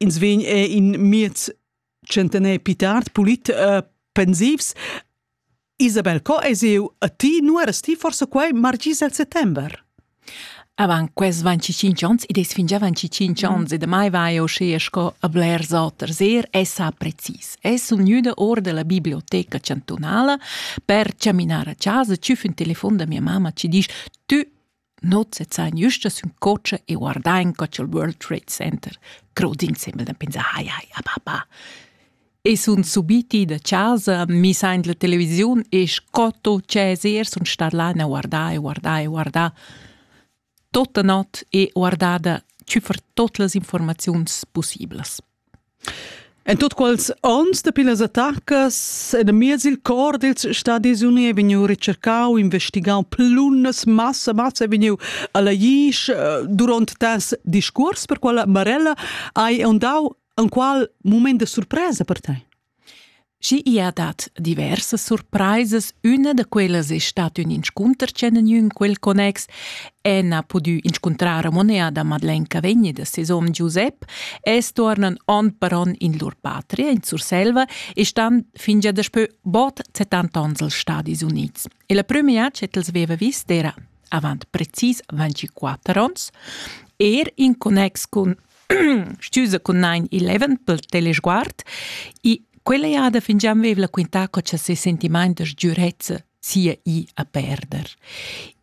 ins vegn er in miez centener più tard pulit uh, pensivs Isabel co es eu a ti nu eras ti forse quai margis al settember Avant quels 25 ans, id es fingià 25 ans mm. e damai vai eu schea sco a blers oters. Er es ha precis. Es sun gnüda or della biblioteca chantunala per chaminar a casa, tschüf ün telefon da mia mamma ci disch, tü Not sezzain güsta sün cocha e guardain co cha'l World Trade Center crod insembel da pensar hai hai a papà. E sun subiti da chasa, mi sain la televisiun e sco tot Cesar sun stat là a guardar e guardar e guardar tota not e guardada tüfer tot las informaziuns possiblas. En tut quels onns dapi las attacas enamiez il cor dils Stadis Uni ei vegniu recercau, investigau plunnas, massa, massa ei vegniu alla Jisch. Duront tas discuors per quella Marella hai ondau en qual mument de surpresa per tei? Schi i ha dat diversas surpraisas, üna da quellas es stat ün inscunter ch'han gnü in quel connex, Anne ha pudü inscuntrar a Monea da Madeleine Cavegni da ses hom Giusep e stuornan on per on in lur patria in Surselva e stan fingia daspö bod 70 ons als Stadis Units. E la prüma cha els veva vis d'era avant precis 24 ons, er in connex cun Stüsa cun nein il leven pel telesguard e quella jada fingià vev'la quintà co cha ses sentimaint da sgürezza sia i a perder.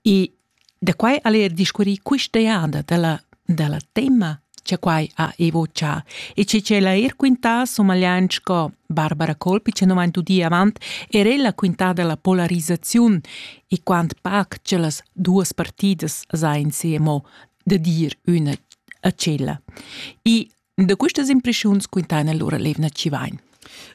E da quai al er discurrì quista jada da la, da la tema che quai ha evoccià e che c'ella er quintà somagliant sco Barbara Colpi che non tudi avant er ella quintà della polarizzaziun e quant pac che las duas partidas sain siemo da dir üna a tschella. E da questas impressiuns quintana lura Levna Civain.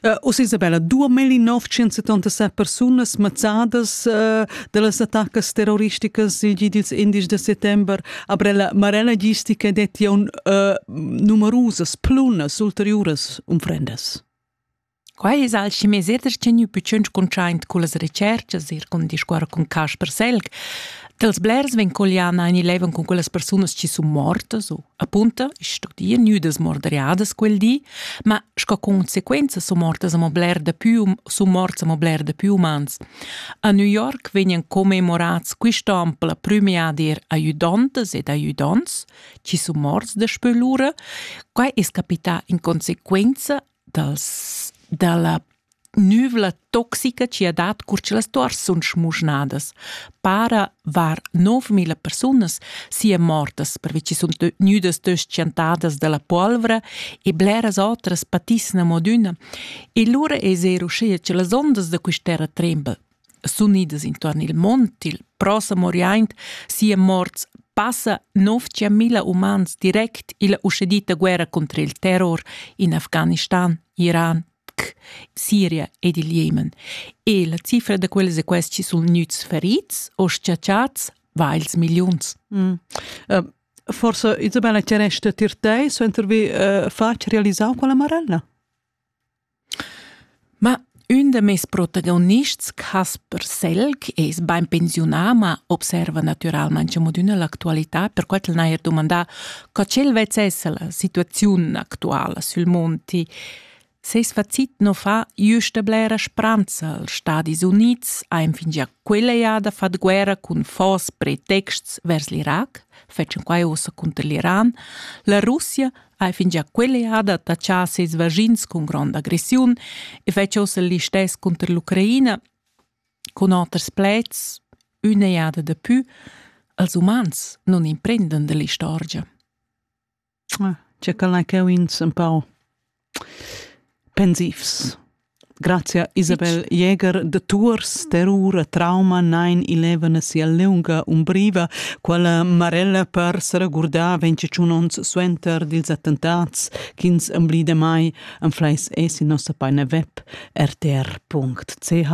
Uh, Uss Isabella, 2977 persunas mazzadas uh, da las attacas terroristicas il gi dils indies da settember aber la marella gistica detti un uh, numerusas plunas ulteriuras unfrendas. Quai es alch meseder tgeniu pitschen cuntschaint cullas retscherchas eir cun discuorrer cun Casper Selg. Dels blers vegn colliana in il leven cun quellas persunas chi sun mortas o, appunto, ich studier nüdas morderiadas quel di, ma sco consequenza sun mortas amo bler da più sun morts amo bler da più umans. A New York vegnan commemorats quist'on per la prüma dir aiudontas ed aiudons, chi sun morts daspö lura. Quai es capità in consequenza dals, dalla nüvla toxica chi ha dat cur cha las tuors sun schmuschnadas. Para var 9000 persunas sia mortas pervi chi sun gnüdas tschentadas da la polvra e bleras otras patissan amo adüna. E lura es eir uschea cha las ondas da quist'terra tremban. s'unidas intuorn il mont il prossem oriaint sia morts passa 9000 umans direct illa uschedita guerra contra il terror in Afghanistan, Iran, Siria ed il Jemen. E la cifra da quels e questi sun gnüts ferits o schiacciats vails milliuns. Mm. Uh, forse Isabella Cerești Tirtei suenter vi uh, faci realizau quella marella? Ma ün da meis protagonists, Casper Selg, es bain pensiunà, ma observa natüralmaing amo d'üna l'actualità, perquai ch'el n'haja dumandà co ch'el vezzessa la situaziun actuala sül monti. Seis facit nu fa jüsta blera spranza als Stadis Units, aint fingià quella jada fat guerra cun fos pretexts vers l'Irac, fetschan quai uossa cunter l'Iran. La Russia hai fingià quell'eada tachà ses vaschins cun gronda aggressiun e fetsch ossa listess cunter l'Ucraina cun oters pleds üna eada da pü als umans non imprendan dell'istorgia. Ah, c'è quella che ins un pau pensivs Grazia Isabel Jäger de Tours, terror e trauma nein ilevana sia lunga umbriva, quella marella per s'regurdar 21 ons suenter dils attentats ch'ins emblida mai en fleis e sin nossa paina web rtr.ch.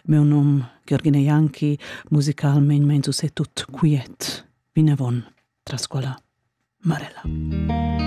Meu num Giorgina Janki, musicalment mein se tut quiet. Vinavon, tras quella marella.